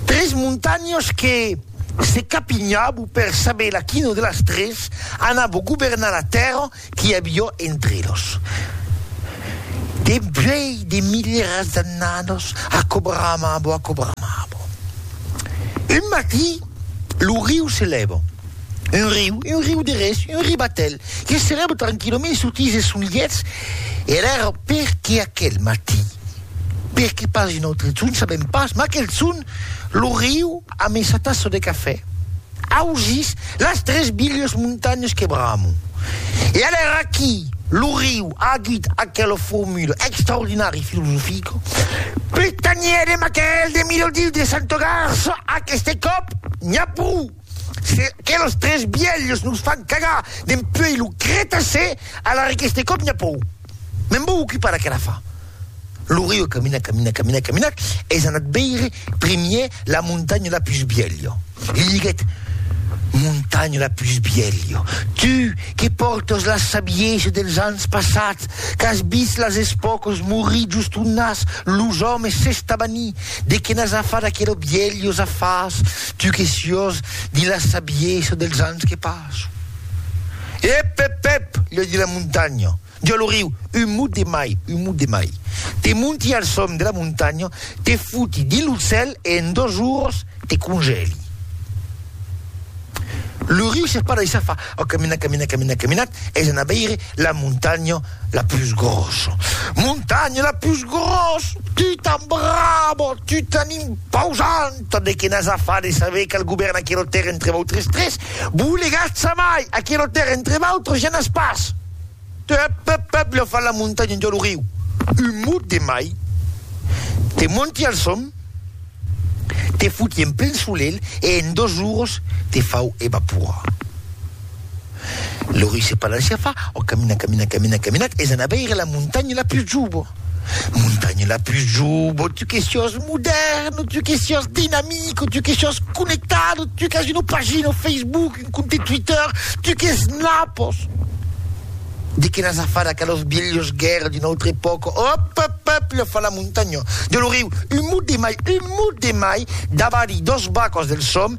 Tres montanhas que se capinhabu per saber laquina de las tres anabo governar la tèrra qu'i avió entre elas. Dempuèi de milieras d'annadas aquò bramabo, aquò bramabo. Un matí, lo riu se lèva. Un riu, un riu de res, un ribatèl, que se lèva tranquilament sotís es sonlièths, e l'èra perqué aquel matí, Perqué pas un autre son? Sabèm pas, mas aquel son, lo riu amb esa tassa de cafè, ausís las tres bilhas montanhas que bramo. E alara aquí, lo riu a dit aquela formula extraordinària e filosofica, Pus tanhèdem aquel de Milodis de Santogarsa, aqueste còp, n'i a pro! Se que los tres bielhs nos fan cagar dempuèi lo Cretacè, alara qu'este còp n'i a pòu. Me'n vò ocupar d'aquela fa. Lo Rio camina, camina, camina, camina, es anat veire primièr la montanha la pus bielha. Li diguèt, Montanha la pus bielha, tu que pòrtas la sabiesa dels ans passats, qu'as vist las espòcas morir just on nas, los òmes, s'estabanir, de que n'as a far d'aquela bielhosa fas, Tu que siós de la sabiesa dels ans que passo. Ep, ep, ep! li di la montanha. Di a lo riu, un mot de mai, un mot de mai. Te monti al sòm de la montanha, te foti dins lo cèl e en dos oras te congèli. Lo riu s'espada e s'afa. Au caminat, caminat, caminat, caminat, es anat veire la montanha la pus grossa. Montanha la pus grossa! Tu t'embraba! Tu t'en imposan! Tot de que n'as a far de saber qual govèrn aquelo tèrra entre vautres tres, vos legatz a mai, aquelo tèrra entre vautres ja n'as pas. Tep, pep, pep, lo fa la montanha un dia lo riu. Un mot de mai, te monti al som, te foti en plen solelh e en dos oros te fau evaporar. Lori se palancia fa, o camina, camina, camina, caminat, es anar veire la montanha la pus jubo. Montanha la pus jubo, tu que sios modèrn, tu que sios dinamico, tu que sios connectado, tu qu'as una pagina o Facebook, un compte Twitter, tu que snapos. De que n'as a far a calos vielhos guèrra d'una autra epòca, op, op, op, lo fa la montanha. De lo riu, un mot de mai, un mot de mai, davari dos bacos del som,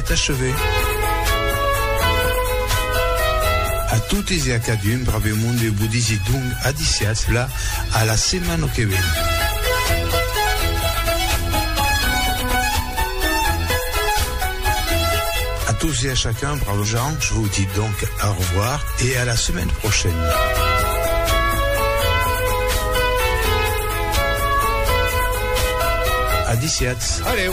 Est achevée. A totes e a cadun, brave monde, eu vos disi donc adisiatz la a la setmana que ven. A tous e a chacun, brave gens, je vous dis donc au revoir e a la semaine prochaine. Adisiatz. Adeu.